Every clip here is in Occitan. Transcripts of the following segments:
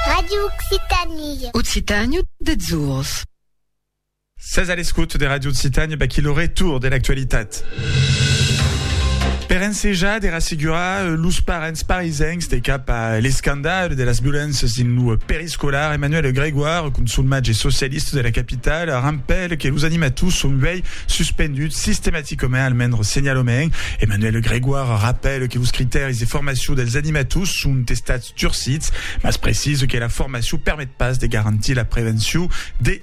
Radio Occitanie. Occitània deths ors. Sètz a l'escot de Radio Occitània, vaquí lo retorn de l'actualitat. Per ensejar de rassegurar los parents parisencs de cap a l'escandal de las violéncias dins lo periscòl, Escolar Emmanuel Grégoire, consulmatge e socialista de la capitala, rampèl que los animators son uèi suspenduts sistematicament, almens senhalament. Emmanuel Grégoire rapèl que los critèris de formacion dels animators son estats durcits, mas precisa que la formacion permet pas de garantir la prevencion de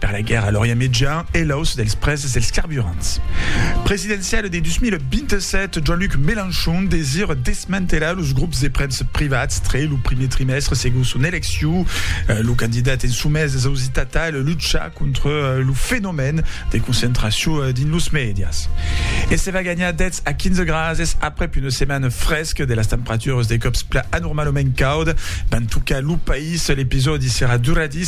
Per la guèrra a l'Orient Mejan e l'auç dels prèses dels carburants presidenciale de 2027, Jean-Luc Mélenchon desir desmantelar los grops de premsa privats tre lo primier trimèstre segon son elecciu. Lo candidat en somés es ausitat tal luchar contra lo fenomèn de concentracion dins los mèdias. E se va ganhar 10 a 15 grases aprèp una setmana fresca de las temperaturas de còps plan anormalament cauda van tocar lo país. L'episòdi serà duradís.